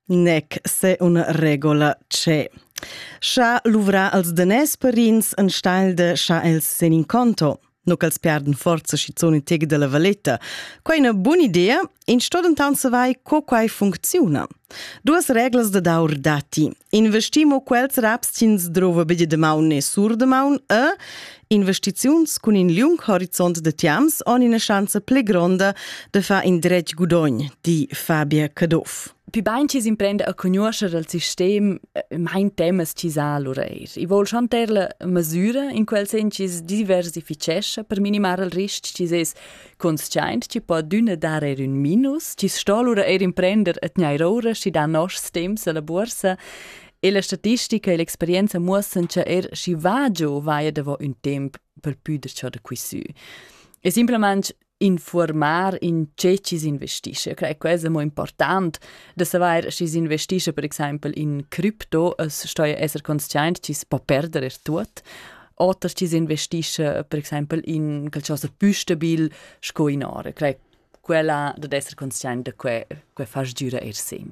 Nec se una regola c'è. Scha luvra als danès parins en steil de scha els sen in conto. No ch'els perden forza schizun in teg della valetta. Quai è una buona idea, in sto dentan savai co quai funcziona. Duas reglas da daur dati. Investimo quels raps cins drova bede de maun e sur de maun e Investiziuns cun in liung horizont de tiams han ina schanza pli gronda de far in dretg gudogn, di Fabia Caduff. Pi bain chi s'imprenda a conoscere il sistem, eh, mein temas chi sa allura eir. I vol schon ter la masüra in quel sen chi diversifichescha per minimar il risc chi es consciaint chi po d'üna dar eir ün minus, chi sto allura eir imprender a tgnair oura schi da noschs temps alla bursa E la statistica e l'experienza muossan cha er schi va giò vaia davo ün temp per pü da ciò da qui sü. E simplamaing informar in che ci si investisce. Eu crei quesa mo important da savair schi si investisce per exaimpel in crypto as stoja esser consciaint chi s po perder er tuot oder ci si investisce per exaimpel in qualcosa più stabil sco in ora. Crei quella dad esser consciaint da que, que fas gira er segn.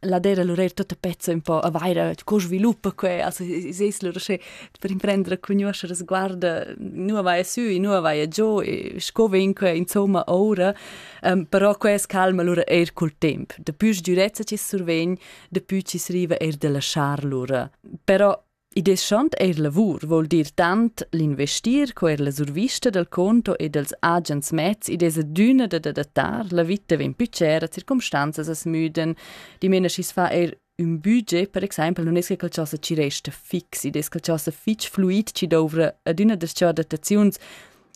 la dera lurer tutta pezza un po a vaira co sviluppa que also es lura sche per imprendere conoscere sguarda nu vai su e nu vai giù e sco vegn que insomma ora um, però que es calma lura eir col temp da pü sdürezza chi survegn da pü chi s'riva eir da lasciar lura però I deschant eir lavur voul dir tant l'investir co eir la survista dal conto e dels agens mezs id es adüna da adattar, la vita vegn più cera, circumstanzas as müden, dimena schi's fa eir ün budget, per exaimpel nun es che qualchosa ci resta fix, id es qualchosa fich fluid chi douvra adüna das-cho adattaziuns.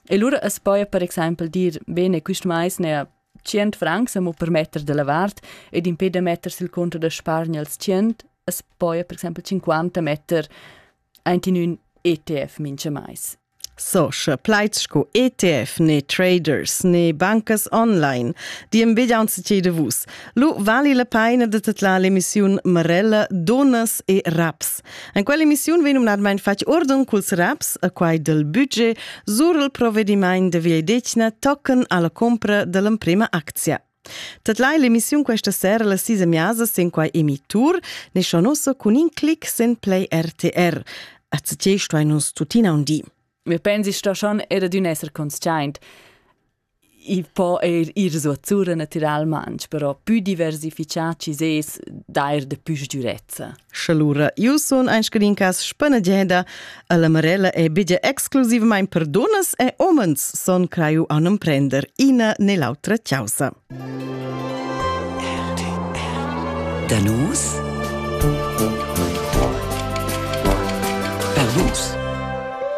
E lura as poja per exaimpel dir, bene, quist mais n'haja Tschient francs amo per metter da la vart ed impè da metter sül conto da spargner els tschient as poja per exaimpel cinquanta metter aint in ün ETF minchamais. So, sche plaids sco ETF ne traders ne bancas online, di im vegliaunzi de vus. Lu vali la peina de tedlar l'emissiun Marella, Donas e Raps. En quell'emissiun vegn numnadmain fatg ordin culs raps e quai del budget sur il provedimaint de viedetgna tochen alla compra dell'emprema actia. Tatlai l'emissiun questa sera la sisa miasa sin quai emitur, ne shonoso cun in clic sen play RTR. Accettei sto nus tuttina un di. Wir pensi sto schon er d'un esser conscient. i po eir ir suotsura natüralmaing, però pü diversifichà chi sez d'eir da pü sgürezza. Sche lura eu sun aint scadin cas spanageda, e la Marella è bigia exclusivmaing per dunnas e umens son craiu a non prender ina ne l'autra chausa. Danus Bellus